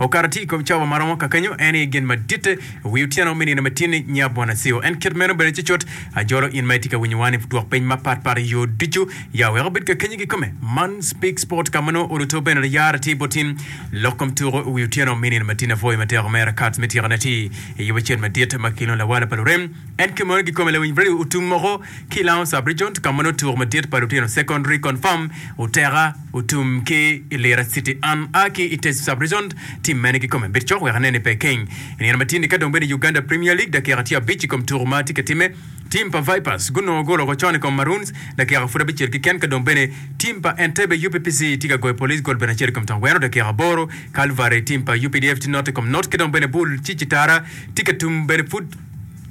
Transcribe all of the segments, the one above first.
Okato tye i kom cawa ma romo kakenyo, en aye gen maditte. Wi otyeno me nino me tin-ni, nya bwon aceo. En kit meno bene cucut. Ajolo in ma itye ka winyowa ni, dwok peny mapat pat i yo ducu. Ya wek obed kakenyo kikome. Man Speak Sport ka ma nongo ot oto bene liyara tye bot in. Lok kom tuko i wi otyeno me nino me tin-ni apwoyo matek omera Kats me tyekone tye i yobe acel madit ma kilwongo Lawala pa lurem. En kit meno kikome lawiny radio otum moko. ki Lowndes Sub-Region ka ma nongo tuko madit pa lutino Secondary Confirm oteka otum ki i Lira City. An a ki i Teso Sub-Region, tim mene kikome bedo cok wek ane ni pe keny i nino ma tye ni ka dong bene Uganda Premier League dakika tye abic i kom tuko ma tye ka timme. Tim pa Vipers gunongo golo woko con i kom Maroons dakika pud abicel keken ka dong bene tim pa Entebbe UPPC tye ka goyo Police gol bene acel i kom tong weno dakika aboro. Kalvari tim pa updf tye note i kom note ki dong bene bul ci Citara tye ka tum bene pud.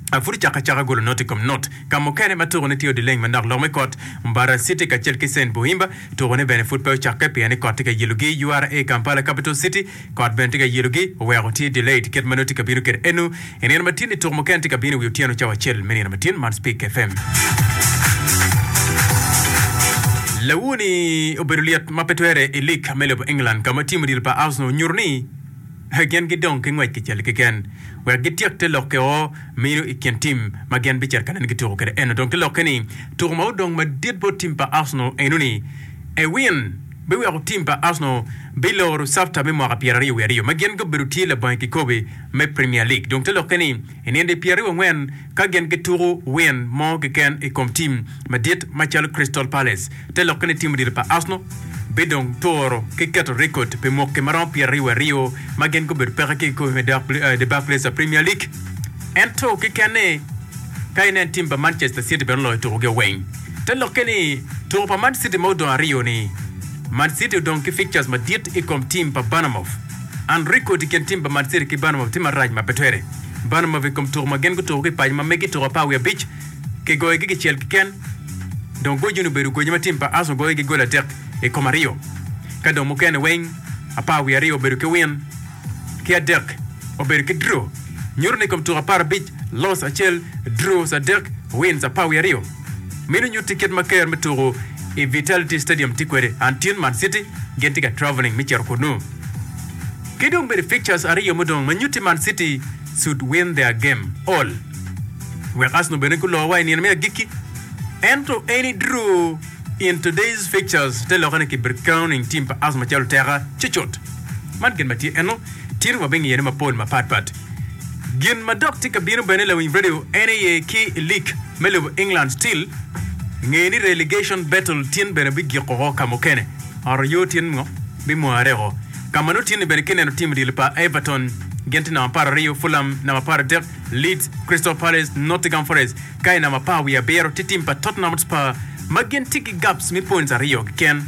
A Pud icako acaka golo not i kom not. Ka mukene ma tukone tye odileng manok lok me kot, Mbarara City kacel ki Saint Bohimba tukone bene pud pe ocakke pien ni kot tye ka yelogi. URA Kampala Capital City kot bene tye ka yelogi, oweko tye delayed kit ma nongo tye ka bino kwede eno. I nino matin-ni tuku mukene tye ka bino i wi otyeno cawa acel me nino matin. Man Speke FM. Lawu ni obedo lyet ma pe twere i lig me lobo England ka ma tim odilo pa Arsenal onyuto ni, Gin gidong ki ngwec kicel keken wek gityek te lokke o mino i kin tim ma gin bicito ka nene gituko kwede eno. Dong gilokke ni tuko ma odong madit bot tim pa Arsenal eno ni ewin biweko tim pa Arsenal biloro cafta me mwaka pyera aryo wiye aryo ma gin gubedo tye labongo i kikobe me Premier League. Dong te lokke ni i nino dye pyera aryo wangwen Ka gin gituko win mo keken i kom tim madit macalo Crystal Palace, te lokke ni tim odilo pa Arsenal bidong turo ki keto rekod pi mwaki maromo pyeraryo aryo ma gin gubedo peke ki i kikopo me The Barclays Premier League. Ento kekeni, ka inen tim pa Manchester City bene oloyo tukogi oweng, te lokke ni tuko pa Man City ma odong aryo-ni. Man City odong ki fixtures madit i kom tim pa Bournemouth. An rik kodi kin tim pa Mancity ki Bournemouth tye marac ma pe twere. Bournemouth i kom tuko ma gin gutuko ki i paco ma megi tuko apar wiye abic, kigoyogi kicel keken, dong gocine obedo goco ma tim pa Arsenal goyo ki goli adek i kom aryo, ka dong mukene weng apar wiye aryo obedo ki win ki adek obedo ki draw. Nyuto ni i kom tuko apar abic, loss acel, draws adek, wins apar wiye aryo. Minu nyutti kit ma ker me tuku i Vitality Stadium tye kwede. An tin Man City gin tye ka travelling me cito kunnu. Ki dong bene fixtures aryo mudong ma nyutti Man City should win their game all wek Arsenal bene gulo wa i nino me agikki. Ento any drew in today's fixtures te lokke ni kibir crowning team pa Arsenal macalo teka cucut. Man gin ma tye eno, tin wabingiyone mapol mapatpat. Gin ma dok tye ka bino bene lawiny radio en aye ki i lig me lobo England still nge ni relegation battle tin bene bi gik oko ka mukene oro yo tin ngo bi mware oko ka ma nongo tin ni bene ki neno tim odilo pa Everton gin tye namba apar aryo Fulham namba apar adek Leeds Crystal Palace Nottingham Forest ka i namba apar wiye abiro tye tim pa Tottenham Hotspur ma gin tye ki gaps me points aryo keken.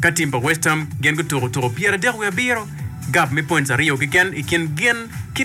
Ka tim pa West Ham gin gutuko tuko pyeradek wiye abiro, gap me points aryo keken i kin gin ki